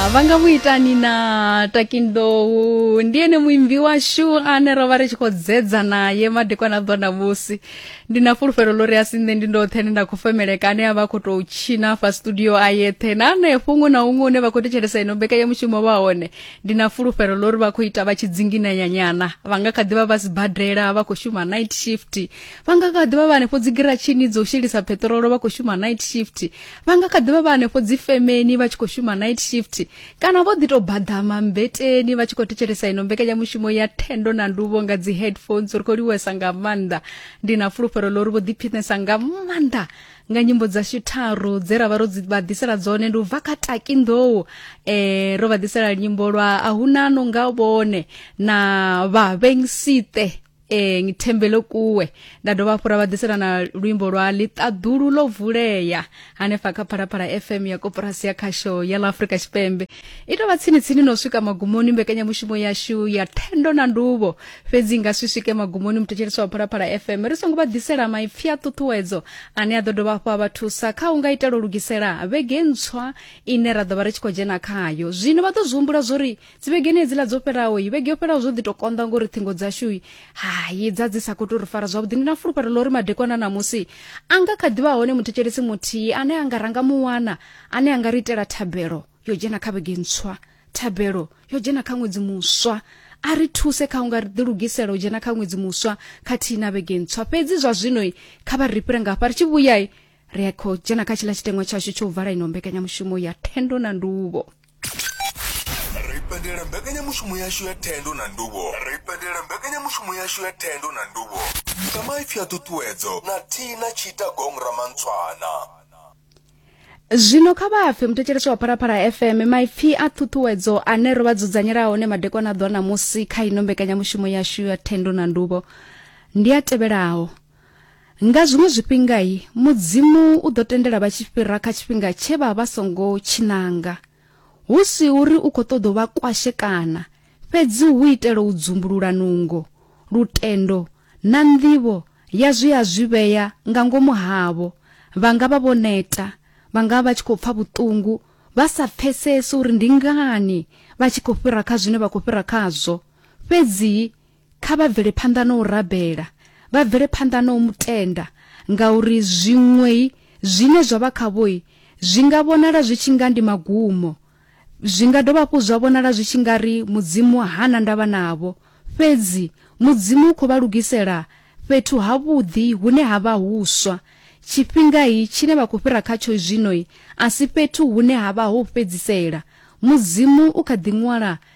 Ah, vha nga mu itani na takindowu ndi ene muimbi washu ane ro vha ri tshi khou dzedza naye madekwana ḓo na musi ndi na fulufhelo ḽo ri a si nṋe ndi ndoṱhe ne nda khou femeleka ane a vha khou tou tshina fa studio a yeṱhe na anefho huṅwe na huṅwe une vha khou thetshelesa ino mbekanyamushumo vha hone ndi na fulufhelo ḽo ri vha khou ita vha tshi dzinginanyanyana vha nga kha ḓivha vha sibadela vha khou shuma night shift vha nga kha ḓivha vha hanefho dzigiratshini dzo shelisa peṱirolo vha khou shuma night shift vha nga kha ḓivha vha hanefho dzi femeni vha tshi khou shuma night shift kana vho ḓi to baḓama mbeteni vha tshi khou thetshelesa ino mbekanyamushumo ya thendo na nduvo nga dzi headphones ri khou liwesa nga maanḓa ndi na fulufhelo ḽo ri vho ḓiphinesa nga maanḓa nga nyimbo dzashu tharu dze ra vha ro dzi vha ḓisela dzone ndi u bva kha taki nḓou eh ro vha ḓisela nyimbo lwa a huna no nga vhone na vhavhengsite e ngithembele kuwe nda dovha hafhu ra vha ḓisela na luimbo lwa ḽiṱaḓulu ḽo vulea hanefha kha phalaphala fm ya koporasi ya khasho ya ḽa afrika tshipembe i tovha tsini-tsini no swika magumoni mbekanyamushumo yashu ya thendo na nduvho fhedzi nga si swike magumoni muthetshelesi wa phalaphala fm ri songo vha ḓisela maipfi a ṱuṱuwedzo ane a ḓo dovha hafhu a vha thusa kha u nga itela u lugisela vhege ntswa ine ra ḓo vha ri tshi khou dzhena khayo zwino vha ḓo zwi humbula zwo ri dzivhegeni hedziḽa dzo fhiraho vhege yo fhiraho zwo ḓi to konḓa ngori ṱhingo dzashu hayi dza dzi sa khou tou ri fara zwavhuḓi ndi na fulufhelo ḽa uri madekwana ṋamusi a nga kha ḓivha hone muthetshelesi muthihi ane a nga ranga muwana ane a nga ri itela thabelo yo dzhena kha vhege ntswa thabelo yo dzhena kha ṅwedzi muswa a ri thuse kha unga ri ḓi lugisela u dzhena kha ṅwedzi muswa khathihi na vhege ntswa fhedzi zwa zwino kha vha ri fhire nga hafha ri tshi vhuyai ri a khou dzhena kha tshiḽa tshiteṅwa tshashu tsho u vala ino mbekanyamushumo ya thendo na nduvho ra ipendela mbekanyamushumo yashu ya thendo na nduvho ra ipendela mbekanyamushumo yashu ya thendo na nduvho sa maipfi a ṱuṱuwedzo na thina tshita gong ramantshwana zwino kha vha pfe muthetshelesi wa phalaphala fm maipfi a ṱhuṱhuwedzo ane ro vha dzudzanyela hone madekwana ḓwa ṋamusi kha ino mbekanyamushumo yashu ya thendo na nduvho ndi a tevhelaho Nga zwiṅwe zwifhinga i Mudzimu u ḓo tendela vha tshi fhira kha tshifhinga tshe vha vha songo tshinanga. Hu si uri u khou ṱoḓa u vha kwashekana, fhedzi hu itela u dzumbulula nungo, lutendo na nḓivho ya zwe a zwi vhea nga ngomu havho. Vha nga vha vho neta, vha nga vha vha tshi khou pfa vhuṱungu, vha sa pfesesi uri ndi ngani vha tshi khou fhira kha zwine vha khou fhira khazwo. Fhedzi Kha vha bvele phanḓa na u rabela, vha bvele phanḓa na u mu tenda, ngauri zwiṅwei zwine zwa vha khavhoi zwi nga vhonala zwi tshi nga ndi magumo. Zwi nga dovha hafhu zwa vhonala zwi tshi nga ri Mudzimu ha na ndavha navho. Fhedzi Mudzimu u khou vha lugisela fhethu havhuḓi hune ha vha huswa. Tshifhingai tshine vha khou fhira khatsho zwinoi a si fhethu hune ha vha ho u fhedzisela. Mudzimu u kha ḓi ṅwala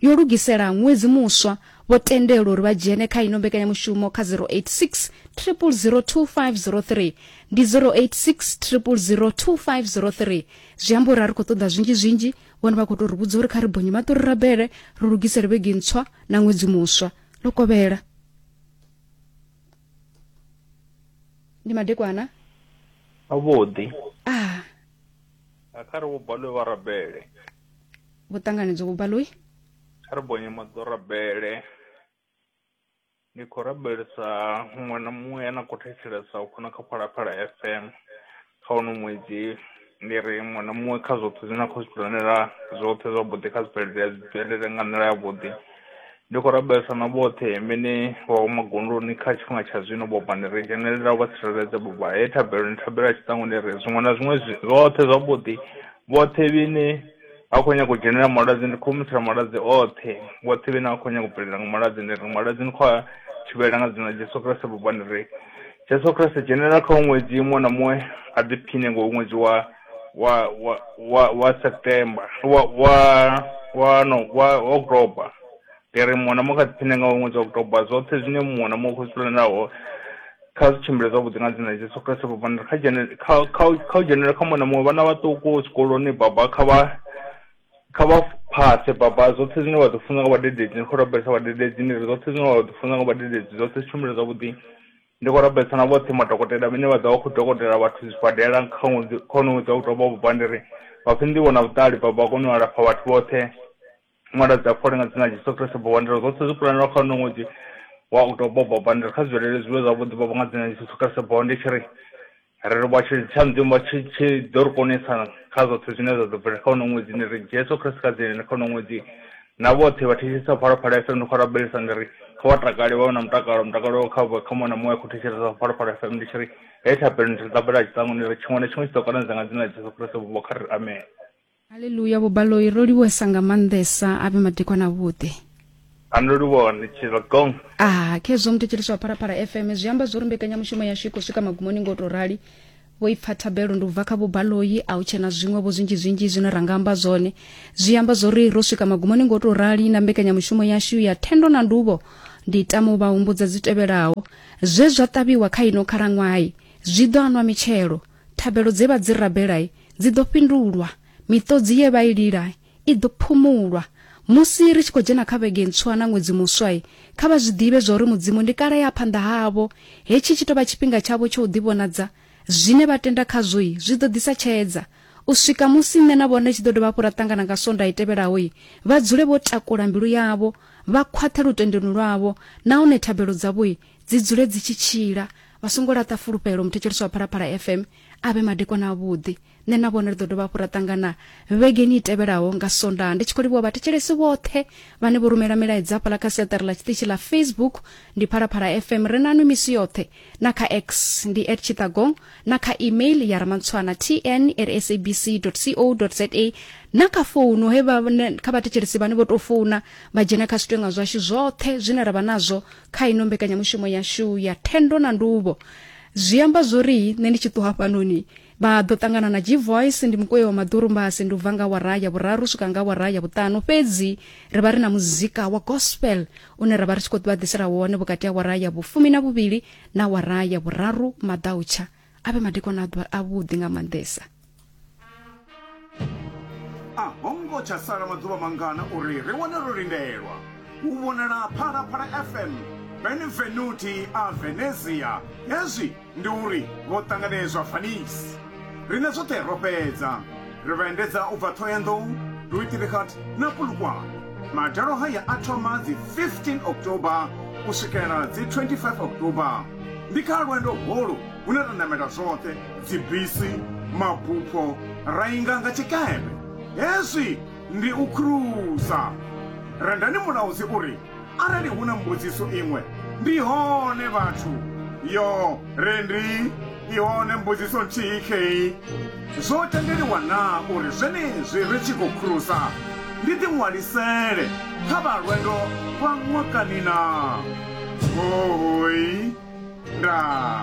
yo lugisela ṅwedzi muswa vho tendelwa uri vha dzhene kha ino mbekanyamushumo kha 086 002503 ndi 086 002503 zwi amba uri a ri khou ṱoḓa zwinzhi zwinzhi vhone vha khou tou ri vhudza uri kha ri bonye maṱori rabele ri lugisele vhege ntswa na ṅwedzi muswa ḽo kovhela ndi madekwana avhuḓi ah. kha ri vho balwe vha rabele vho ṱanganedzwa vho baloi kha ri bonye maḓorabele ndi khou rabelisa muṅwe na muṅwe ane a khou thetshelesa u khona kha phalaphala fm kha uno ṅwedzi ndi ri muṅwe na muṅwe kha zwoṱhe zwine a khou zwi planela zwoṱhe zwavhuḓi kha zwibvelele zwibvelele nga nḓila yavhuḓi Ndi khou rabelesa na vhoṱhe vhene vha vha magondoni kha tshifhinga tsha zwino bobani ri dzhenelela u vha tsireledza boba he thabelo ni thabela tshiṱangoni ri zwiṅwe na zwiṅwe zwoṱhe zwavhuḓi vhoṱhe vhene vha khou nyanga u dzhenelela malwadze ndi khou humisela malwadze oṱhe vhoṱhe vhene vha khou nyanga u bvelela nga malwadze ndi ri malwadze ni khou a thivhela nga dzina ḽa Jesu Kriste bobani ri Jesu Kriste dzhenelela kha ṅwedzi muṅwe na muṅwe a ḓiphiṋe ngo ṅwedzi wa wa wa wa wa september wa wa wa no wa october ndi ri muṅwe na muṅwe kha dziphine nga ṅwedzi wa october zwoṱhe zwine muṅwe na muṅwe khositulanaho kha zwi tshimbile zwavhuḓi nga dzina jesu kriste vhupanda kha dzhene kha kha u- kha u dzhenelela kha muṅwe na muṅwe vhana vhaṱuku zwikoloni baba kha vha kha vha phase baba zwoṱhe zwine vha ḓo funza nga vhadededzi ni khou rabelesa vhadededzi ni ri zwoṱhe zwine vha ḓo funza nga vhadededzi zwoṱhe zwi tshimbile zwavhuḓi Ndi khou rabelisa na vhoṱhe madokotela vhane vha ḓo vha vha khou dokotela vhathu zwibadela kha ṅwedzi kha honoyu ṅwedzi wa u thoma wa Vhubvanḓiri, vha pfe nḓivho na vhuṱali vha vha kone u alafha vhathu vhoṱhe nga nḓila dza fhole nga dzina ḽa Jesu Kriste. Vhubvanḓiri zwoṱhe zwo pulanelaho kha honoyu ṅwedzi wa u thoma wa Vhubvanḓiri kha zwi bvelele zwi vhe zwavhuḓi Baba nga dzina ḽa Jesu Kriste. Baba ndi tshi ri. Ri ri vha tshi tsha Mudzimu vha tshi tshi ḓo ri konesa kha zwoṱhe zwine zwa ḓo bvelela kha uno ṅwedzi ndi ri Jesu Khristo kha dzine kha uno ṅwedzi na vhoṱhe vha thetshelesa phalaphala FM ndi khou rabelisa ndi ri kha vha takale vha vhe na mutakalo mutakalo kha vha kha mona muṅwe a khou thetshelesa phalaphala FM ndi tshi ri he thabelo ndi ri ṱambela tshiṱangu ndi ri tshiṅwe na tshiṅwe tshi ḓo konadzea nga dzina ḽa Jesu Khristo vho kha ri amen Haleluya vhubaloi ro livhuwesa nga maanḓesa avhe madekwana avhuḓi anolivhone tshilogong ah khezwo muthetshelisi wa pharapara fm zwi amba zwo ri mbekanyamushumo yashu i khou swika magumoni ngo tou rali vho i pfa thabelo ndi u bva kha vhubaloi a u tshena zwiṅwe vho zwinzhi zwinzhi zwine ra nga amba zwone zwi amba zwo ri ro swika magumoni ngo tou rali na mbekanyamushumo yashu ya thendo na nduvho ndi tamo vha humbudza dzi tevhelaho zwe zwa ṱavhiwa kha ino khalaṅwayi zwi ḓo anwa mitshelo Thabelo dze vha dzi rabela dzi ḓo fhindulwa, miṱodzi ye vha i lila i ḓo phumulwa. Musi ri tshi khou dzhena kha vhege ntswa na ṅwedzi muswa, kha vha zwi ḓivhe zwa uri Mudzimu ndi kale ya phanḓa havho. Hetshi tshi tou vha tshifhinga tshavho tsha u ḓivhonadza. Zwine vha tenda khazwo zwi ḓo ḓisa tshedza. U swika musi nṋe na vhone tshi ḓo dovha hafhu ra ṱangana nga Sondaha i tevhelaho, vha dzule vho takula mbilu yavho, vha khwaṱhe lutendoni lwavho, nahone thabelo dzavho dzi dzule dzi tshi tshila vha songo laṱa fulufhelo muthetshelesi wa phalaphala fm a vhe madekwana avhuḓi nṋe na vhone ri ḓo dovha hafhu ra ṱangana vhegeni i tevhelaho nga sondaha ndi tshi khou livhuwa vhathetshelesi vhoṱhe vhane vho rumela milaedza hafhaḽa kha siaṱari ḽa tshiṱitshi ḽa facebook ndi phalaphala fm ri nanwi misi yoṱhe na kha x ndi at tshitagong na kha email ya ramantshwana tn at sabc co za na kha founu he kha vhathetshelesi vhane vho tou founa vha dzhena kha zwitwenga zwashu zwoṱhe zwine ra vha nazwo kha ino mbekanyamushumo yashu ya thendo na nduvho zwi amba zwori nṋe ndi tshi ṱuha fhanoni vha ḓo ṱangana na g-voice ndi mukoyo wa maḓurumbasi ndi u bva nga wara ya vhuraru swika nga wara ya vhuṱanu fhedzi ri vha ri na muzika wa gospel une ra vha ri tshi khou ḓivha ḓisela wone vhukati ha wara ya vhufumi na vhuvhili na wara ya vhuraru maḓautsha a vhe madekwana a ḓuvha avhuḓi nga maanḓesa a ho ngo tsha sala maḓuvha mangana uri ri wane ro lindelwa u vhonala phalaphala fm benvenuti a venezia hezwi ndi uri vho ṱanganedzwa fanisi riṋe zwoṱhe ro fhedza Ri vha endedza u bva Thohoyandou, Luitibighat na Polokwane. Madalo haya a thoma dzi 15 October u swikela dzi 25 October. Ndi kha lwendo holu hune ra namela zwoṱhe, dzibisi, mabupho, ra inga nga tshikepe. Hezwi ndi u khurusa. Rendani Mulaudzi u ri, Arali hu na mbudziso iṅwe, ndi hone vhathu. Yo, Rendi, i hone mbudziso nthihi khei. Zwo tendeliwa na uri zwenezwi ri tshi khou khurusa, ndi ḓi ṅwalisele kha vha lwendo lwa ṅwakani na? Hoooi. Nda.